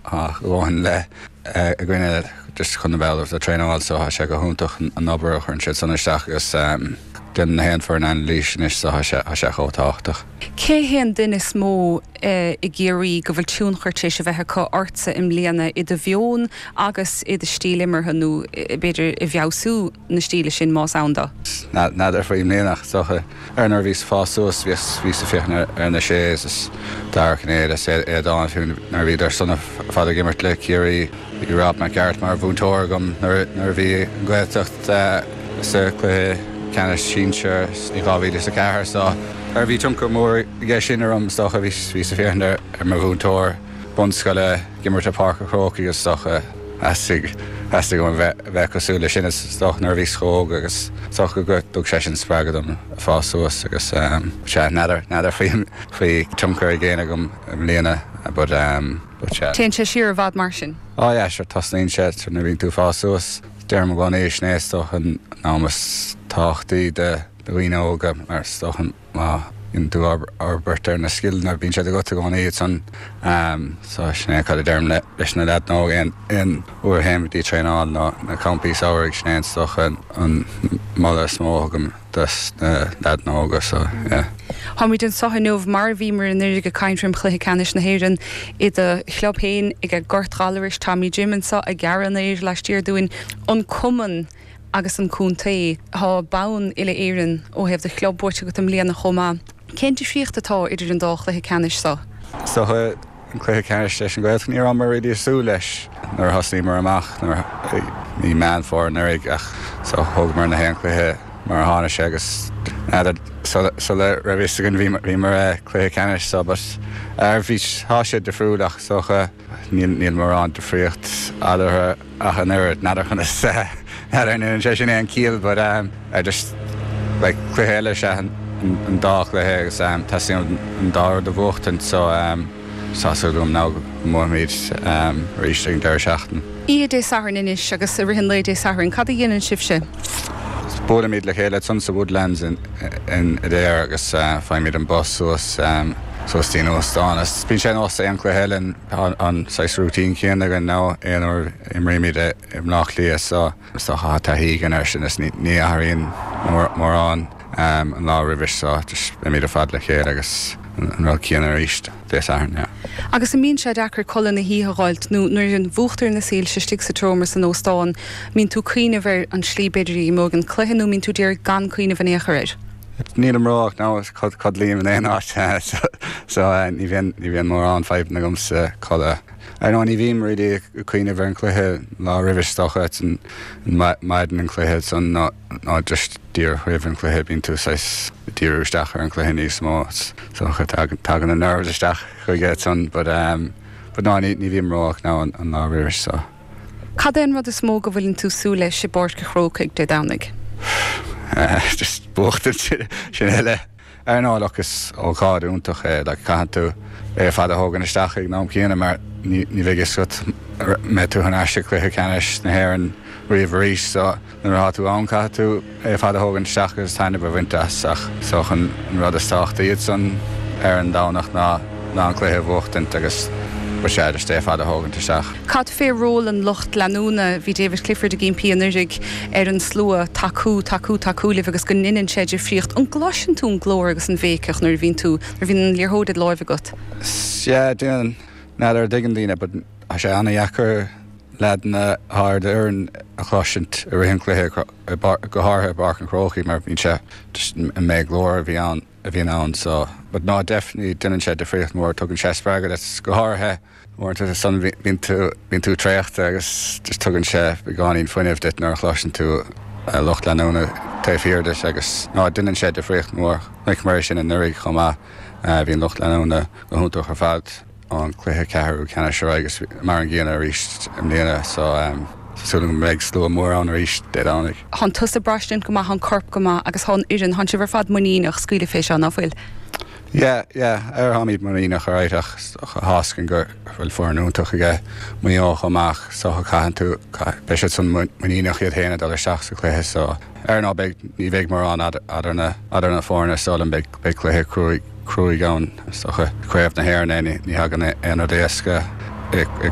a dhóthain le a gcoinne just chun a bheith ullamh do traenáil so thá sé go hiontach an obair a chuireann siad san isteach agus déanann na haon foireann anailís anois so thá sé thá sé chomh tábhachtach. Cé hé an duine is mó i gCiarraí go bhfuil tionchar t'réis a bheith acu ortsa i mbliana i do mheon agus i do stíl imeartha nó b'fhéidir i bhfeabhsú? na stíle sin, más ann do. N'fheadar faoi mbliana ach is dócha, ar nuair a bhíos ag fás suas, bhíos ag féachaint ar na Sés is Dara Cinnéide is Aodán fiú nuair a bhíodar san ar fad ag imirt le Ciarraí. Bhí Rob Mac Gearailt mar mhúinteoir agam nuair a bhí an Ghaeltacht sa chluiche ceannais sinsear i 2004 so bhí tionchar mór aige sin orm is dócha. Bhíos ag féachaint ar mo mhúinteoir bunscoile ag imirt i Páirc a' Chrócaigh is dócha. Theastaigh, theastaigh uaim bheith, bheith cosúil leis sin, is dócha nuair a bhíos chomh hóg agus, is dócha go dtug sé sin spreagadh dom ag fás suas agus ehm, sea, n'fheadar, n'fheadar faoi, faoi tionchar ag éinne agam i mbliana but ehm, but sea. Téann sé siar i bhfad mar sin? Á yeah, sure, tosnaíonn sé nuair a bhíonn tú ag fás suas, deirim i gcónaí, is é is dócha an am is tábhachtaí do, do dhaoine óga mar is dócha an, Má bhíonn tú ag obair ar na scileanna, bíonn siad agat i gcónaí ansan. So, sin é cad a deirim leis na leaideanna óga aon uair a théim go dtí traenáil nó na campaí samhraidh, sin é is dócha an moladh is mó a thugaim do na leaideanna óga, so, yeah. Táimid anseo inniu mar a bhíomar anuraidh ag caint roim Chluiche Ceannais na hÉireann i do chlub féin ag an Gort Ghallarais. Tommy Jim anseo ag gearradh an fhéir laistiar dúinn, an cumann. agus an contae. Tá bonn uile-Éireann ó thaobh do chlub buaite agat i mbliana chomh maith. Cén difríocht atá idir an dá chluiche ceannais seo? Is dócha an cluiche ceannais leis an Ghaeltacht, ní rabhamar really ag súil leis nuair a thosnaíomar amach, i Meán Fómhair anuraidh ach thógamar na haon chluiche mar a tháinig sé agus n'fheadar, sula raibh fhios againn bhíomar i cluiche ceannais so but tá sé difriúil ach is dócha níl mórán difríocht eatarthu. ach an oiread, n'fheadar conas a, an ndéanann sé sin aon chiall but um I just like cluiche eile is ea an dá chluiche agus um teastaíonn an dá rud a bhuachtaint so um tá súil agam now go mbuafaimid um arís ag an deireadh seachtaine. Oíche Dé Sathairn anois agus i rith an lae Dé Sathairn cad a dhéanann sibhse? Buailimid le chéile ansan sa Woodlands in in Adare agus uh faighimid an bus suas um suas dtí'n óstán is bíonn sé ar nós aon cluiche eile in Tá an saghas routine céanna againn now, aon uair a imrímid i mBleá Cliath so tá taithí againn ar sin is ní athraíonn mórán an lá roimhis so just beimid ar fad le chéile agus an rud céanna arís Dé Sathairn, yeah. Agus an mbíonn sé deacair codladh na hoíche a dh'fháilt nó nuair a mhúchtar na soilse istigh sa tseomra san óstán mbíonn tú ag cuimhneamh ar an slí b'fhéidir a imeoidh an cluiche nó mbíonn tú ag iarraidh gan cuimhneamh in aon chor air? Nílim róbhocht, no, codlaím in aon áit so ní bhíonn mórán fadhbanna agamsa codladh. Ar ndóigh ní bhím really ag cuimhneamh ar an chluiche an lá roimhe is dócha, maidin an chluiche nó just díreach roimh an chluiche bíonn tú saghas ag díriú isteach ar an chluiche níos mó is dócha, tagann na nerves isteach chuige but no ní bhím róbhocht now an lá roimhe so. Cad é an rud is mó go bhfuileann tú súil leis i bPáirc a' Chrócaigh Dé Domhnaigh? Buachtaint, sin uile. Ara no, look, is ócáid iontach é, like caitheann tú é ar fad a thógaint isteach ag an am céanna mar ní bheidh fhios agat an mbeidh tú thar n-ais sa cluiche ceannais na hÉireann riamh arís so, Nuair atá tú ann caithfidh tú é ar fad a thógaint isteach agus taitneamh a bhaint as ach is dócha an rud is tábhachtaí ansan ar an Domhnach ná ná an cluiche a bhuachtaint agus yeah just é ar fad a thógaint isteach. Cad fé ról an lucht leanúna? Bhí David Clifford ag ímpí anuraidh ar an slua tacú, tacú, tacú libh agus go ndeineann sé difríocht. An gcloiseann tú an glór agus an bhéiceach nuair a bhíonn tú, nuair a bhíonn an liathróid id láimh agat? Yeah, deineann. N'fheadar an dtuigeann daoine but tá sé ana-dheacair. leaideanna ar d'fhoireann a chloisint i rith an chluiche, go háirithe i bPáirc an Chrócaigh mar bhíonn sé, an méid glóir a bhí ann, a bhíonn ann so but no definitely deineann sé difríocht mhór, tugann sé spreagadh duit go háirithe uaireanta is ansan bíonn tú, bíonn tú traochta agus just tugann sé beagáinín fuinnimh duit nuair a chloiseann tú lucht leanúna taobh thiar duit agus no deineann sé difríocht mhór, chonaiceamar é sin anuraidh chomh maith, bhí an lucht leanúna go hiontach ar fad. an cluiche ceathrú ceannais ar aghaidh agus mar an gcéanna arís i mbliana so tá súil agam go mbeidh slua mór ann arís Dé Domhnaigh. Thán tusa braistint go maith, thá an corp go maith agus thá an fhoireann, thán sibh ar fad muiníneach scaoileadh fé seo, ná fuil? Yeah, yeah, ara tháimid muiníneach alright ach tá fhios againn go bhfuil foireann iontach aige Maigh Eo chomh maith so caitheann tú, beidh siad san muiníneach iad fhéin ag dul isteach sa cluiche so ara no beidh, ní bheidh mórán idir na foirne so like beidh Beidh cluiche cruaidh ann is dócha. Craobh na hÉireann é, ní thagann aon rud éasca i.